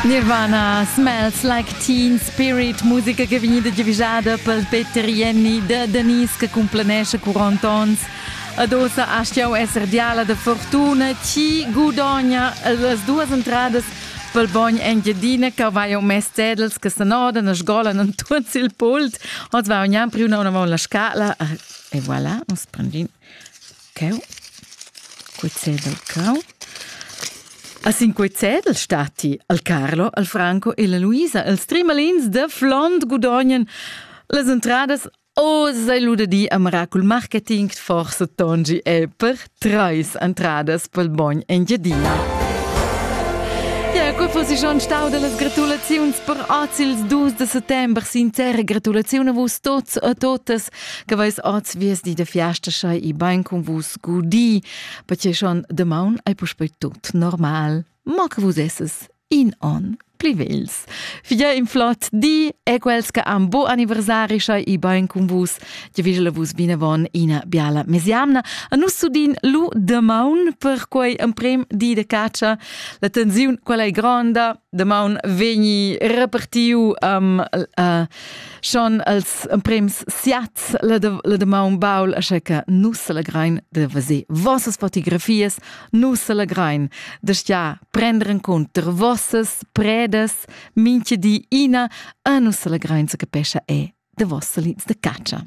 Nirvana, Smells Like Teen Spirit, musica che è vegnida divigiada per Peter Jenny da Denise che cumplenesce cu Antons. Adossa astiau esser diala de fortuna, chi gudogna las duas entradas pel bogn Engiadina che vai mes tedels che s'anodan e sgolan en tuts il pult. Ons va ognan priu una una la scala e voilà, ons prendin Cheu, quei cedel cau. A sin quei cedel statti il Carlo, il Franco e la Luisa. Els trimalins da flond gudognan las entradas Oz ei lu da dir a Miracul Marketing forsa Tongi è per treis entradas pel bogn Engiadina. Ja, quei fossi schon stau dallas gratulaziuns per oz ils dus de settember. Sincera gratulaziun a vus tots e totas Che veis oz viesti de fiasteschai i bein con vus gudi, perché schon demaun ei puspei tut normal. Ma che vus esses in on pli vels. Figlia in flot di e quels che am bo anniversari schai i bein con vus, die vigele vus binevon ina biala mesiamna. A nus sudin lu demaun per quei emprem di de caccia. La tensiun quella è gronda, damaun vegni repartiu um, uh, schon als emprems siats la, de, la damaun baul, asche che nus selegrein de vese vossas fotografies, nus selegrein de stia prender in conter vossas predes, minche di ina, a nus selegrein se capescha e de vossa linz de caccia.